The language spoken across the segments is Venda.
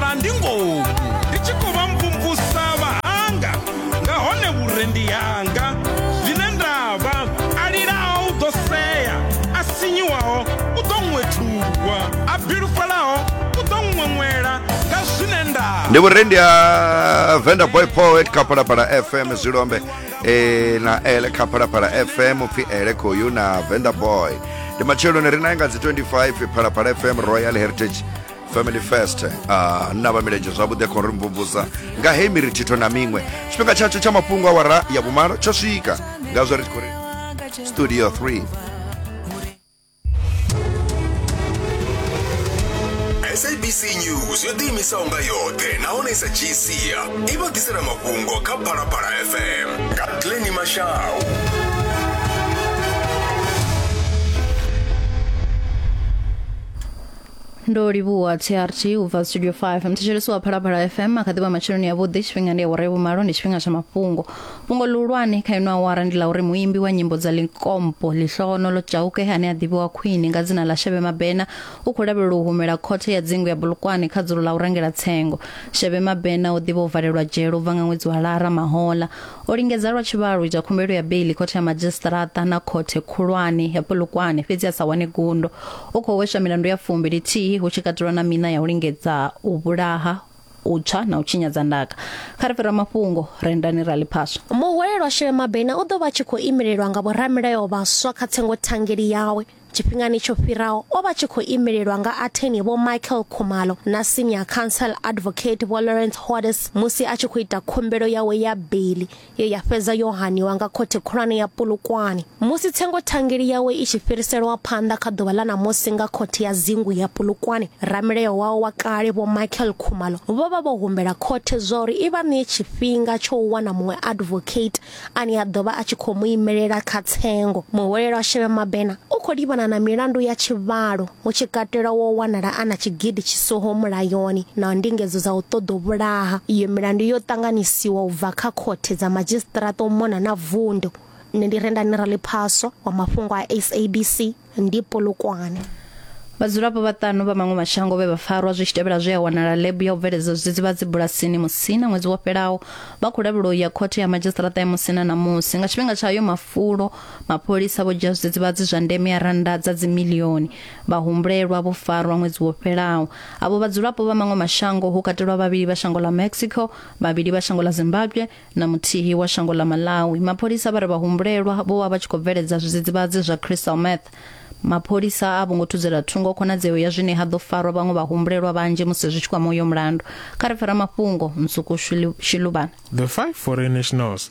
ra ndi ngoku ndi tshi khou vha mvumvusa vhahanga nga hone vhurendi hanga zwine nda vha a lilaho u ḓo sea a sinyiwaho u ḓo ṅwethulwa a bilufhalaho u ḓo ṅweṅwela nga zwine nda ndi vhurendi ha venda boy poet kha phalaphala fm zwilombe eh, na ele kha phalaphala fm upfi ele khoyu na venda boy ndi matsheloni ri naye nga dzi 25 phalaphala fm royal heritage family first uh, na vha milenzhe zwavhuḓi khou ri mvumvusa nga hei mirithitho na miṅwe tshifhinga tshatsho tsha mafhungo a wara ya vhumalo tsho swika nga zwo ri khou ri studio 3 sabc news yo ḓiimisaho nga yoṱhe nahone i sa dzhii sia i vha ḓisela mafhungo kha phalaphala fm nga tleni mashau ndo livhuwa trg u bva studio 5 mthetshelesi wa phalaphala fm a kha ḓivha matsheloni yavhuḓi tshifhinga ndi awara yavhumalo ndi tshifhinga tsha mafhungo fhungo ḽihulwane kha ino awara ndi ḽa uri muimbi wa nyimbo dza likompo ḽihlogono ḽo tshauke ane a ḓivhiwa khwini nga dzina ḽa shebe mabena u khou lavhelelwa u humela khothe ya dzingu ya bulukwane kha dzulo ḽa u rengela tsengo shebe mabena o ḓivha u valelwa dzhele u bva nga ṅwedzi wa lara mahola o lingedza lwa tshivhalo u ita khumbelo ya beili khothe ya madzhisiṱaraṱa na khothe khulwane ya bulukwane fhedzi a sa wane gundo u khou hweswa milandu ya fumbi lithihi hu tshi katelwa na mina ya u lingedza u vhulaha u tswa na u tshinyadza ndaka kha ri fhira mafhungo rendani ra ḽiphaswa muhwelelwa shele mabena u ḓo vha tshi khou imelelwa nga vhoramilayo vhaswa kha tsengo thangeli yawe tshifhingani tsho fhiraho o vha tshi khou imelelwa nga atheni vho michael khumalo na senior council advocate vho lawrence hodes musi a tshi khou ita khumbelo yawe ya beli ye ya fhedza yo haniwa nga Khothe Khulwane ya Polokwane musi tsengothangeli yawe i tshi fhiriselwa phanḓa kha ḓuvha ḽa ṋamusi nga Khothe ya Dzingu ya Polokwane, ramilayo wao wa kale Vho Michael Khumalo vho vha vho humbela khothe zwauri i vha ṋee tshifhinga tsho u wana muṅwe advocate ane a ḓo vha a tshi khou mu imelela kha tsengo. Muhwelelwa Shebe Mabena u khou livhana na milandu ya tshivhalo. hu tshi katelwa wo wanala a na tshigidi tshi siho mulayoni na ndingedzo dza u ṱoḓa u vhulaha. Iyo milandu yo ṱanganyisiwa u bva kha khothe dza madzhisiṱiraṱa u mona na vundu. Nṋe ndi Rendani Raliphaswa wa mafhungo a SABC ndi Polokwane. Vhadzulapo vhaṱanu vha maṅwe mashango vhe vha farwa zwi tshi tevhela zwe a wanala ḽebu ya u bveledza zwidzidzivhadzi bulasini Musina ṅwedzi wo fhelaho vha khou lavhelwa u ya khothe ya madzhisiṱiraṱa ya Musina ṋamusi nga tshifhinga tsha hayo mafulo Mapholisa vho dzhia zwidzidzivhadzi zwa ndeme ya rannda dza dzimilioni. Vhahumbulelwa vho farwa ṅwedzi wo fhelaho. Avho vhadzulapo vha maṅwe mashango ho katelwa vhavhili vha shango ḽa Mexico, vhavhili vha shango ḽa Zimbabwe na muthihi wa shango ḽa Malawi. Mapholisa vha ri vhahumbulelwa vho vha vha tshi khou bveledza zwidzidzivhadzi zwa crystal meth. Mapholisa a vho ngo thudzela thungo khonadzeo ya zwine ha ḓo farwa vhaṅwe vhahumbulelwa vhanzhi musi zwi tshi kwama uyo mulandu. Kha ri pfe ramafhungo Nsuku Shiluvhana. The Five Foreign Nationals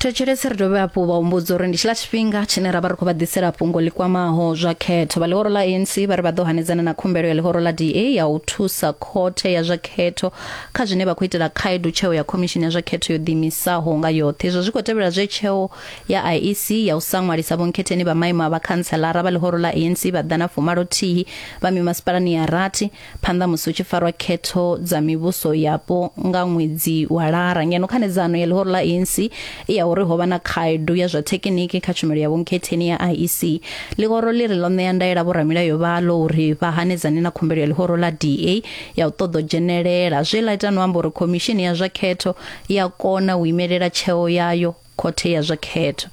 thetshelesi ri dovhe hafhu vha humbudza uri ndi tshiḽa tshifhinga tshine ra vha ri khou vha ḓisela fhungo ḽi kwamaho zwa khetho vha ḽihoro ḽa anc vha ri vha ḓo hanedzana na khumbelo ya ḽihoro ḽa da ya u thusa khothe ya zwa khetho kha zwine vha khou itela khaedu tsheo ya khomishini ya zwa khetho yo ḓiimisaho nga yoṱhe izwo zwi khou tevhela zwe tsheo ya IEC ya u sa ṅwalisa vhonkhetheni vha maimo a vhakhantselara vha ḽihoro ḽa ANC vha ḓana fumalothihi vha mimasipalani ya rathi phanḓa musi hu tshi farwa khetho dza mivhuso yapo nga ṅwedzi wa lara ngeno khanedzano ya ḽihoro ḽa ANC i ya uri ho vha na khaedu ya zwa thekiniki kha tshumelo ya vhonkhetheni ya IEC ḽihoro ḽi ri ḽo ṋea ndaela vhoramilayo vhaḽo uri vha hanedzane na khumbelo ya ḽihoro ḽa DA ya u ṱoḓa u dzhenelela zwe ḽa ita no amba uri khomishini ya zwa khetho ya kona u imelela tsheo yayo khothe ya zwa khetho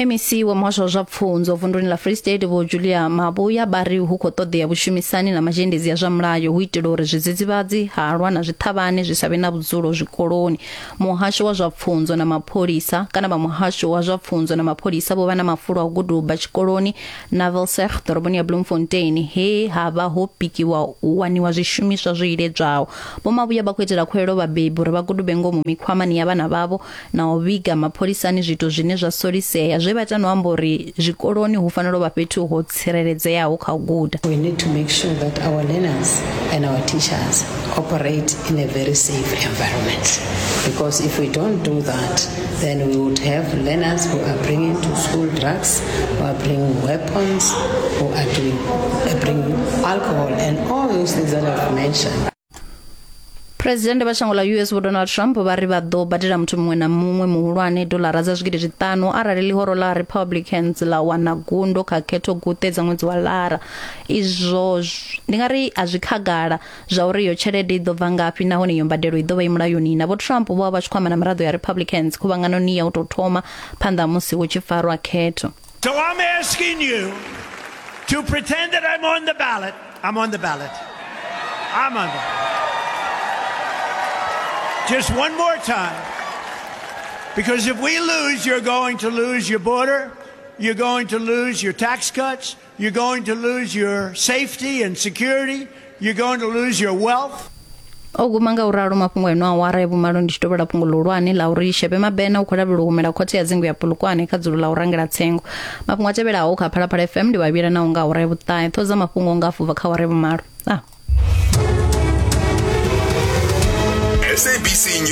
mec wa muhasho wa zwa pfunzo vunduni la free state vho julia mabuya ba ri hu khou ṱoḓea vhushumisani na mazhendedzi ya zwa mulayo hu itela uri zwidzidzivhadzi halwa na zwiṱhavhane zwi sa vhe na vhudzulo zwikoloni muhasho wa zwa pfunzo na mapholisa kana vha muhasho wa zwa pfunzo na mapholisa vho vha na mafulo a u guduba tshikoloni na Velseg ḓoroboni ya Bloemfontein he ha vha ho pikiwa u waniwa zwishumiswa zwo iledzwaho. Vho Mavhuya vha khou itela khuwelelo vhabebi uri vha gudube ngomu mikhwamani ya vhana vhavho na u vhiga mapholisani zwiito zwine zwa solisea zwe vha ita no amba uri zwikoloni hu fanela u vha fhethu ho tsireledzeaho kha u guda. We need to make sure that our learners and our teachers operate in a very safe environment because if we don't do that Then we would have learners who are bringing to school drugs, who are bringing weapons, who are doing, uh, bringing alcohol, and all those things that I've mentioned. phuresidennde vha shango ḽa us vho donald trump vha ri vha ḓo badela muthu muṅwe na muṅwe muhulwane dolara dza zwigidi zwiṱanu arali ḽihoro ḽa republicans ḽa wana gundo kha khetho guṱe dza ṅwedzi wa lara izwo zw- ndi nga ri a zwi khagala zwa uri iyo tshelede i ḓo bva ngafhi nahone iyo mbadelo i ḓo vha i mulayoni na vho trump vho vha vha tshi khou amba na miraḓo ya republicans khuvhanganoni ya u tou thoma phanḓa ha musi hu tshi farwa khetho So I'm asking you to pretend that I'm on the ballot. I'm on the ballot. I'm on the Just one more time. Because if we lose, you're going to lose your border, you're going to lose your tax cuts, You're going to lose your safety and security. You're going to lose your wealth. o guma nga u ralo mafhungo eno awara ya vhumalo ndi tshi tovhela fhungo ḽihulwane ḽa uri shebe mabena u khou lavhelwa u humela khothe ya dzingu ya pulukwane kha dzulo ḽa u rangela tsengo mafhungo a tevhelaho kha phalaphala fm ndi vhavhila naho nga awara ya vhuṱahe ṱhodza mafhungo nga afubva kha awara ya vhumalo ah. SABC